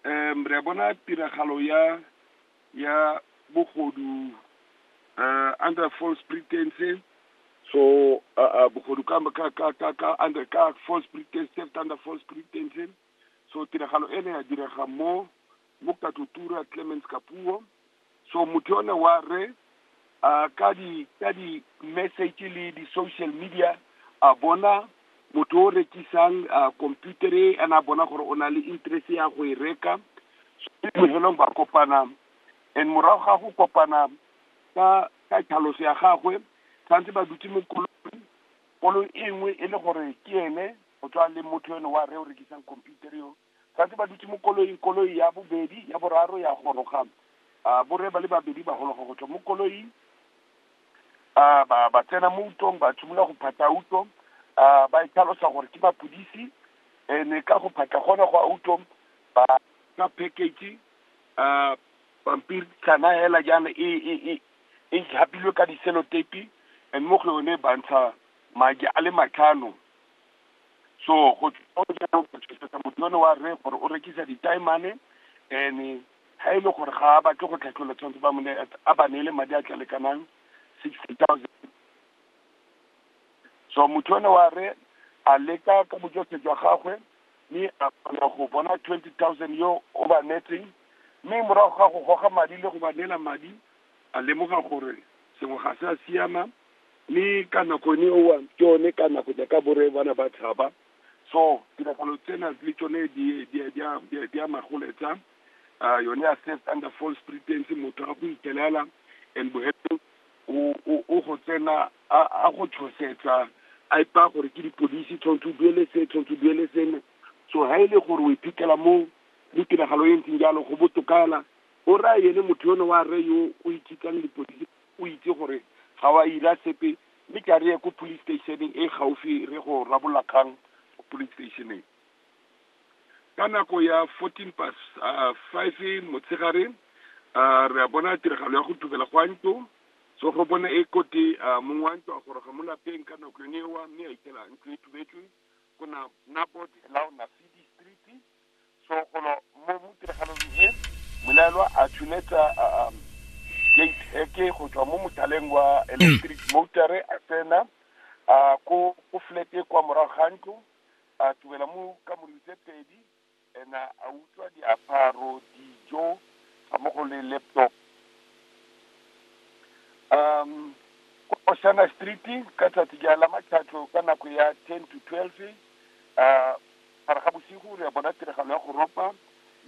um re a bona tiragalo ya ya bogodu uh, under false pretenses so uh, uh, bogodu ka, ka, ka, ka, ka under ka false pretense theft under false pretenses so tiragalo e ne ya direga mo mo katotura clemens kapuo So motho yone wa re a ka di ka di message le di social media a bona motho o rekisang a computer e ana a bona gore o na le interest ya go e reka bohelong ba kopana and morago ga go kopana ka ka tlhaloso ya gagwe tshwanetse ba dutse mo kolong kolong e nngwe e le gore ke ene o tswa le motho yone wa re o rekisang computer yo Ba ntse ba dutse mo koloing, koloi ya bobedi, ya boraro ya goroga. Borre ba le babedi ba gologa go tswa mo koloing, ba ba tsena mo utong, ba simolola go phatla uto, ba e tlhalosa gore ke mapodisi. Ene ka go phatla gone go a uto, ba ka package pampitshana hela jaana e e e e japilwe ka di-cellotape, and mo go yone ba ntsha madi a le matlhano. so go tshwetsa motho yone wa re gore o rekisa ditaemane and ha e le gore ga a batle go tlhatlhola tshwanetse ba mone a ba neele madi a tla lekanang sixty thousand so motho yone wa re a leka ka bojose jwa gagwe mme a kgona go bona twenty thousand yo o ba netseng mme morago ga go goga madi le go ba neela madi a lemoga gore sengwe ga se a siama Mme ka nako ene eo, ke one ka nako jaaka borre ba ne ba tshaba. So, tiragalo tsena le tsone di, di, di, di, di a magoletsa. Uh, yone ya theft under false pretense, motho a go itelela and bohelong o, o, o go tsena a, a go tshosetsa a ipa gore ke dipodisi tshwanetse o duele se tshwanetse o duele sene so ha e le gore o iphitlhela mo mo tiragalo e ntseng jalo go botokala o raya ene motho yone wa rre yo o ikitsang dipodisi o itse gore ga wa ira sepe, mme ke a re ye ko police station-eng e gaufi re go rarabolla kgang ko police station-eng. Ka nako ya fourteen pas five motshegare, re a bona tiragalo ya go tukela gwa ntlo, so go bone e kote mong wa ntlo a goroga mo lapeng ka nako yone eo, mme a itela ntlo e tubetswe ko street. so golo mo mo tiragalong e molaelwa a tshuletsa um gate eke go tswa mo mothaleng wa electric motor a tsena a ko ko flat e kwa morago ga ntlo a tubela mo ka molelo tse pedi and a a utlwa diaparo dijo ga mo go le laptop um ko osana street ka tsatsi ja la matlhatlo ka nako ya ten to twelve a Gare ga bosigo re a bona tiragalo ya go ropa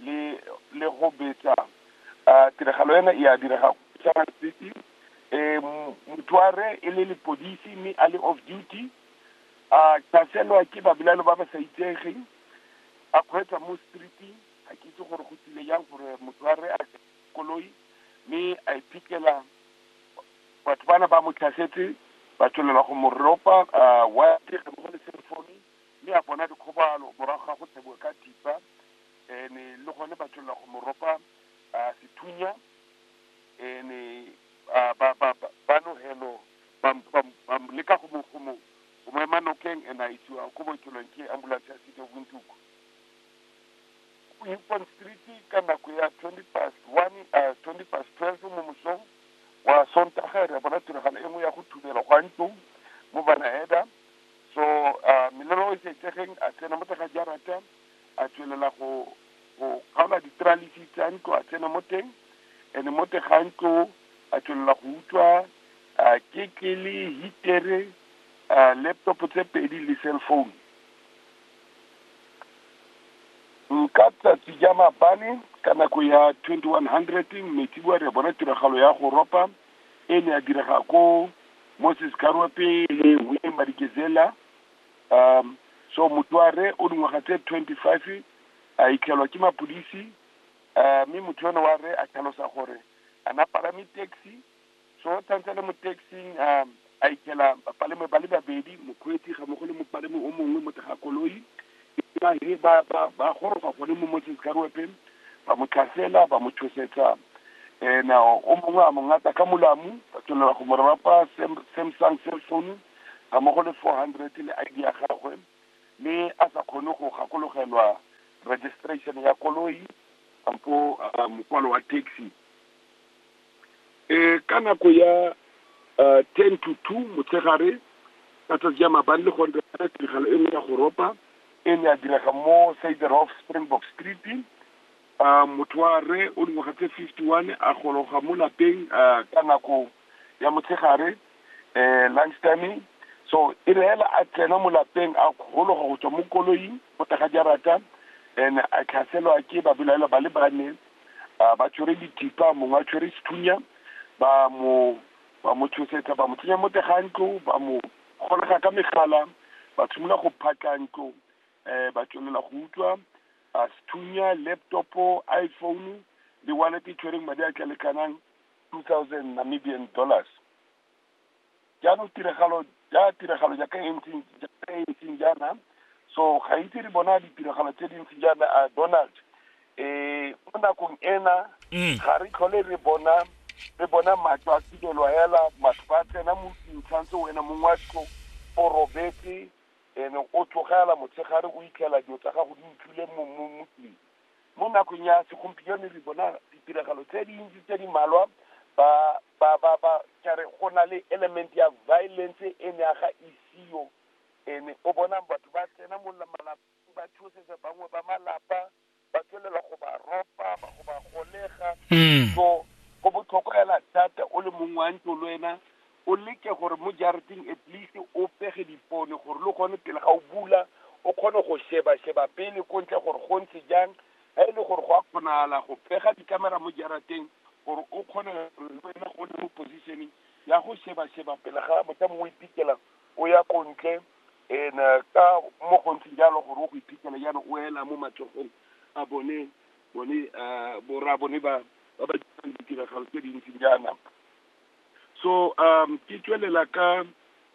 le le go betsa. A tiragalo ena e a direga sa matsete. E mothoare e le lepodisi mme a le off duty. A tlhaselwa ke babelaelo ba ba sa itsegeng. A kgweetsa mo street-ing. Ga ke itse gore go tsile jang gore mothoare a koloi mme a iphitlhela batho bana ba mo tlhasetse ba tswelela go mo ropa. A wa go le cell phone. Mme a bona dikgobalo morago ga go tseboa ka thipa, ene le gone ba tswelela go mo ropa sethunya, ene ba, ba, ba, ba nogelo, ba, ba, ba leka go mo, go mo, go mo ema nokeng, ene a isiwa ko bookelong ke ambulance ya City of Windhoek. Houston Street ka nako ya 20 past 1, uh, 20 past 12 mo mosong wa Sontaga, re a bona tiragalo e nngwe ya go thubela kwa ntlong mo Banaeda. So uh, Melero o Itsegeng a tsena mo tega jarata a tswelela go go kgaola ditralisi tsa ntlo a tsena mo teng ene mo tega ntlo a tswelela go utlwa uh, ketlele hitere uh, laptop tse pedi le cell phone nka tsatsi ja mabane ka nako ya 2100 mmetsiboa re bona tiragalo ya go ropa e ne ya direga ko Moses Karwepe le Willie Madikizela. Um, so motho wa re o dingwaga tse twenty five a itlhelwa ke mapodisi um mme motho yone wa re a tlhalosa gore a na palame taxi so tshwanetse le mo taxing um a itjela bapalami ba le babedi, mokgweetsi ga mmogo le mopalami o mongwe mo teng ga koloi. Ba he ba ba ba goroga gone mo Moses Karuepe, ba mo tlhasela, ba mo tshosetsa. Ena o mongwe a mo ngata ka molamu, ba tswelela go mo rwapa Sam Samsung cell phone ga mmogo le 400 le ID ya gagwe, mme a sa kgone go gakologelwa registration ya koloi kampo mokwalo wa taxi. um ka nako ya um ten to two motshegare ka tsatsi ya mabane le gone re tiragalo e nngwe ya go ropa e ne ya direga mo saderhof springbok street um motho wa re o dingwaga tse fifty one a gologa mo lapeng um ka nako ya motshegare um lunch timing so e re hela a tsena mo lapeng a gologa go tswa mo koloing Go tla ga jarata ene a tlhaselwa ke babelaelwa ba le bane a ba tshwere dithipa mongwe a tshwere sethunya ba mo ba mo tshosetsa ba mo tsenya mo tega ntlo ba mo golega ka megala ba tshimolola go phatla ntlo um ba tswelela go utswa a sethunya laptop iphone le wallet e tshwereng madi a tla lekanang two thousand namibian dollars jaanong tiragalo ja tiragalo jaaka e ntseng jaaka e ntseng jaana so ga itse re bona ditiragalo tse di ntseng jaana a donald um mo nakong ena mm. ga re tlhole re bona re bona matlo a tibelwa hela batho ba tsena mo dintshantse wena mongwe wa tlo o robetse ene o tlogela motshegare o itlhela dilo tsa gago di utlwile mo tlong Mo nakong ya segompieno re bona ditiragalo tse dintsi tse di malwa ba ba ba ba kare go na le element ya violence e ne a ga isiyo and o bona batho ba tsena mo malapeng ba tshosetsa bangwe ba malapa ba tswelela go ba ropa ba go ba golega so go botlhokwa fela thata o le mongwe wa ntlo le wena o leke gore mo jarateng at least o pege dipone gore le gone pele ga o bula o kgone go sheba sheba pele ko ntle gore go ntse jang ga e le gore go a kgonagala go pega dikamera mo jarateng gore o kgone wena go le mo positioning ya go sheba sheba pele ga motho mongwe o ipikela o ya ko ntle and eh, ka mo go ntse jalo gore o go ipikela jalo o ela mo matsogong a bone bone eh, borra bone ba ba ba dirang ditiragalo tse dintsi jaana so um ke tswelela ka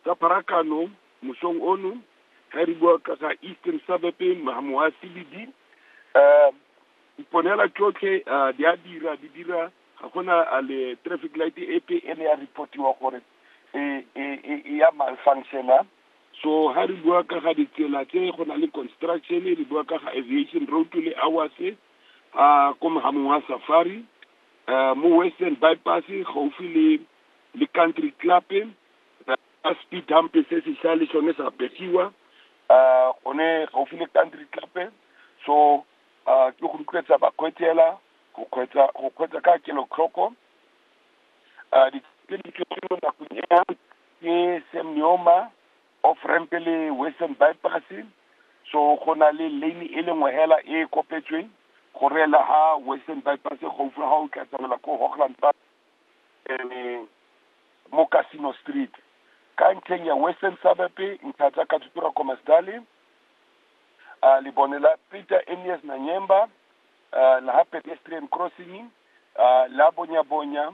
ka pharakano mosong ono ga re bua ka ga eastern suburb moa cbd um diponela tsotlhe um di a dira di dira ga gona a le traffic light epe e ne ya reportiwa gore e e e e ya malfunctiona so ga re bua ka ga ditsela tse go na le construction re bua ka ga aviation road le hours a ko mogamong wa safari mo Western By Pass, gaufi le, le Country Club, ka speed hump se se sa le sone sa begiwa, gone gaufi le Country Club, so, ke go rotloetsa bakgweetsi hela, go kgweetsa, go kgweetsa ka kelotlhoko, di mo nakong ena, ke Sam Nuojoma. off ramp le western bypass so go na le lane e le nngwe hela e kopetsweng go reela ha western bypass gaufi ga o tla tsamaela ko hochland park um mo casino street ka ntlheng ya western suburb ntlha tsa katutura komasdale uh, lebone la peter enias nanyemba uh, la ha pedestrian crossing uh, la bonya bonya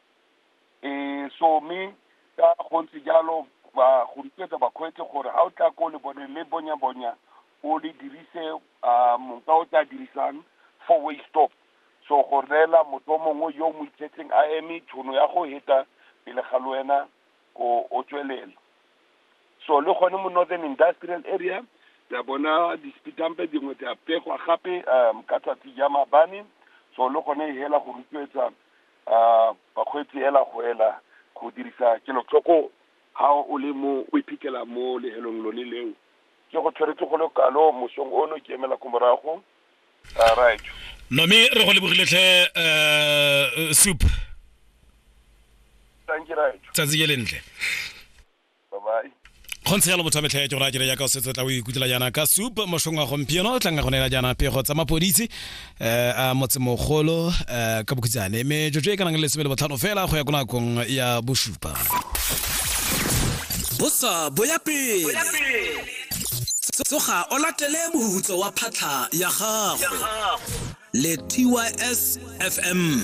um so mme ka gontse jalo ba go rotloetsa bakgweetsi gore ga o tla ko le bone le bonya bonya o le dirise a monka o tla dirisang four way stop so go neela motho o mongwe yo o mo itsetseng a eme tshono ya go heta pele ga le wena o o tswelela so le gone mo northern industrial area tsa bona dispitampe dingwe tsa pegwa gape um ka tsatsi ja mabane so le gone e hela go rotloetsa A, bakgweetsi ela go ela go dirisa kelotlhoko ha o le mo o iphitlhela mo lehelong lone leo. Ke go tshweretse go le kalo mosong ono ke emela ko morago. A, right. Nomi, re go lebogile tlhe uh, Soup. Thank you, right. Tsatsi ke lentle. kgontse yalo motho a metlha ya ke gore a kere yaka o setse o tla o ikutlela jaana ka soup mošong wa gompieno o tlanga go neela jaana pego tsa mapoditse um a motsemogolo um eh, ka bokhutsane mme jojo e ka nang le lesome le botlhano fela go ya ko nakong ya bosupa bosa boya pele tsoga o latele mohutso wa phatlha ya gago le tys fm